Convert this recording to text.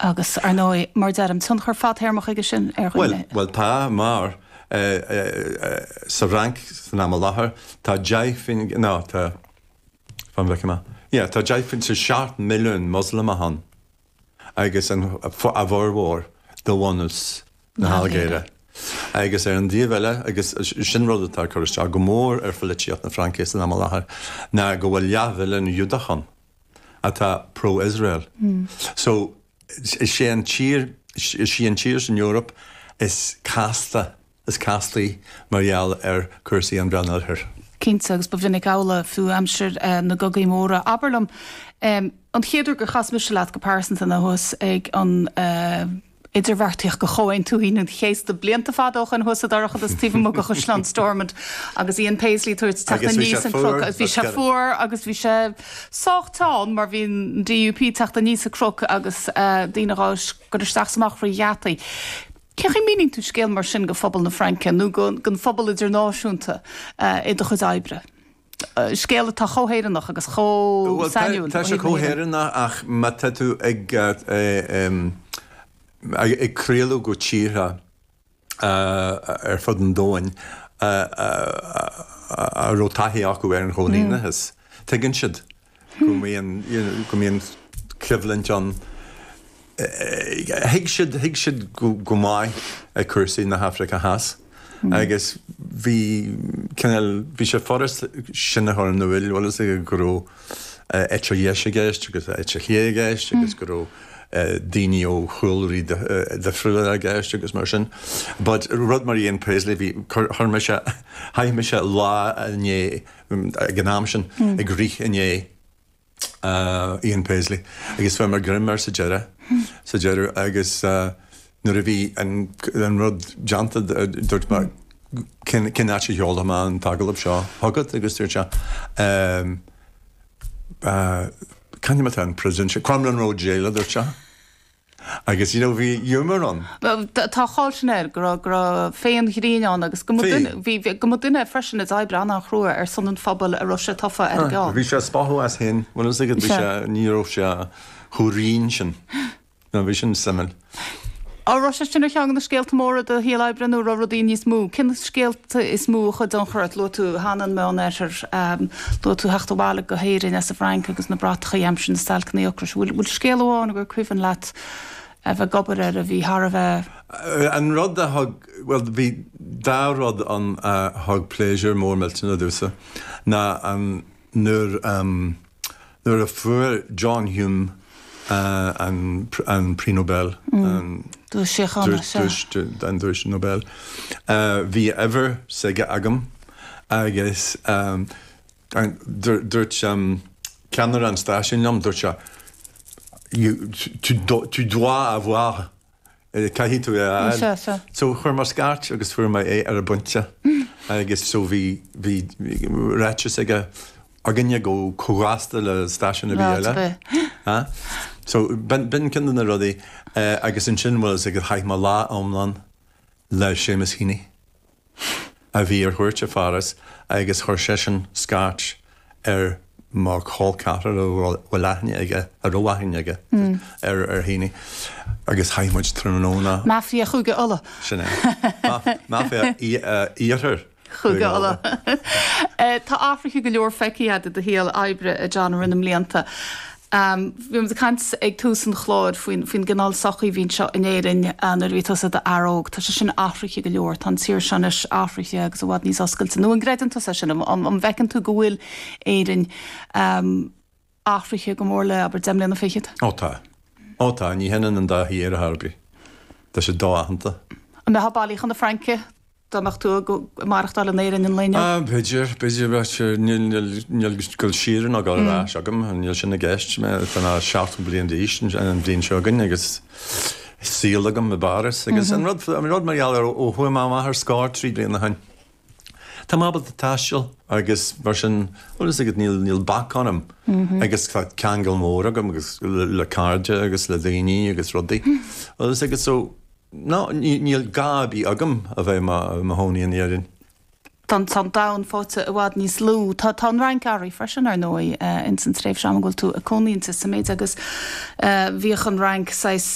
Agus, ar ndóigh, mar a deirim, tionchar fadthéarmach aige sin ar dhaoine. Bhuel, bhuel, tá, mar sa Fhrainc san am i láthair, tá deich, no, tá, fan a bhfeice mé, yeah, tá deich faoin, sé, seacht milliún Moslamach ann agus an, a bhformhór de bhunús na hAilgéire. Agus ar an dtaobh eile, agus sin rud atá ag cur isteach go mór ar pholaitíocht na Fraince san am i láthair, ná go bhfuil leathmhilliún Giúdach ann. atá pro-Israel. So, is é an tír, is í an tír san Eoraip is casta, is castaí mar gheall ar cúrsaí an Mheánoirthir. Cinnte, agus ba mhinic amhlaidh fiú aimsir na gcogaí móra. Abair liom, an chéad uair gur chas mise leat go pearsanta ná thuas ag an, idirbheartaíocht do Chomhaontú Aoine an Chéasta blianta fada ó shoin thuas sa dorchadas taobh amuigh de Chaisleán Stormont agus Ian Paisley ag tabhairt teacht aníos an cnoc agus bhí sé fuar agus bhí sé sách teann mar bhí an DUP ag teacht aníos an cnoc agus daoine ag dul isteach is amach thrí gheataí. Cé chaoi a míníonn tú scéal mar sin do phobal na Fraince nó don phobal idirnáisiúnta i do chuid oibre? scéal atá chomh hÉireannach agus chomh sainiúil. Bhuel, tá sé chomh hÉireannach ach má tá tú ag craoladh go tíortha ar fud an domhain a raibh taithí acu ar an chóilíneachas, tuigeann siad. go mbíonn, you know, go mbíonn coimhlint ann. Thuig siad, thuig siad go maith cúrsaí na hAfraice Theas agus bhí cineál, bhí sé furasta sin a chur in úil, bhfuil 'fhios agat go raibh eite dheis i gceist agus eite chlé i gceist agus go raibh daoine ó chúlraí difriúla i gceist agus mar sin. But rud mar Ian Paisley, bhí, chuir mise, chaith mise lá amháin, ag an am sin, ag rith i ndiaidh Ian Paisley agus fuair mé greim air sa deireadh, sa deireadh agus nuair a bhí an rud déanta dúirt mé cén, cén áit a seolfaidh mé an t-agallamh seo chugat agus dúirt sé ehm, chuig an príosún, Crumlin Road Jail a dúirt sé. Agus you know bhí humour ann. Tá an cháil sin air, go raibh, go raibh féith an ghrinn ann agus go mba duine, bhí, bhí, go mba duine é freisin a d'oibrigh an-an-chrua ar son an phobail a raibh sé tofa ar a gceann. Bhí sé ag spochadh as féin, bhuel is dóigh bhí sé, ní raibh sé chomh righin sin. Nó bhí sin suimiúil. An raibh sé sin ar cheann de na scéalta móra i do shaol oibre nó a raibh rudaí níos mó, cén scéal? is mó a chuaigh i dtionchar ort. Luaigh tú cheana an Meánoirthear. Luaigh tú theacht abhaile go hÉirinn as an bhFrainc agus na bratacha aimsir na stailceanna ocrais. An bhfuil scéal amháin agur cuimhin leat a bheith ag obair air a bhí thar a bheith. An rud a thug, bhuel, bhí dá rud ann a thug pléisiúr mór millteanach domhsa ná an. Nuair a Nuair a fuair John Hume an an Prix Nobel, an Duais Síochána, so an Duais Nobel, bhí uimhir s'aige agam agus dúirt ceannaire an stáisiúin liom, dúirt sé, tu dois avoir. Caithfidh tú é a fháil. So chuir mé scairt agus fuair mé é ar an bpointe agus so bhí ráiteas aige againne chomh gasta le stáisiún ar bith eile. So b'in ceann de na rudaí agus ansin bhuel, chaith mé lá iomlán le Seamus Heaney. a bhí ar chuairt i Pháras agus chuir seisean scairt ar mo chol ceathrar a bhfuil aithne aige, a raibh aithne aige, ar Heaney agus chaith muid tráthnóna. Mafia Chúige Uladh. Sin é. Mafia iarthar Chúige Uladh. Tá athruithe go leor feicthe agat i do shaol oibre, a John, i rith na mblianta. Bhíomar ag caint ag tús an chláir faoin gcineál sochaí a bhí anseo in Éirinn nuair a bhí tusa i d'fhear óg. Tá sé sin athraithe go leor, tá an tír seo anois athraithe agus i bhfad níos oscailte. Nó an gcreideann tusa é sin? An bhfeiceann tú go bhfuil Éire athraithe go mór le, abair, deich mbliana fichead? Ó tá. Ó tá. Ní hionann an dá thír ar chor ar bith. Tá siad do-aitheanta. An mbeifeá ag bailiú leat chun na Fraince? dá mbeadh tú ag maireachtáil in Éirinn an lae inniu? B'fhéidir, b'fhéidir. Níl dul siar ná dul ar ais agam, níl sin i gceist. Tá mé seachtó bliain d'aois an bhliain seo againn agus saol agam i bPáras agus an rud, an rud mar gheall ar ó chuaigh mé amach ar scor trí bliana ó shin, tá mé ábalta taisteal agus mar sin, bhuel 's agat, níl, níl bac orm agus tá ceangal mór agam agus le cairde agus le daoine agus rudaí. Bhuel 's agat, so. Nó, níl gá ar bith agam a bheith i mo chónaí in Éirinn. Tá an domhan faighte i bhfad níos lú. Tá an Fhrainc athraithe freisin, ar ndóigh, ins an tréimhse ama go bhfuil tú ag cónaí inti. Sa méid is go mbíodh an Fhrainc saghas.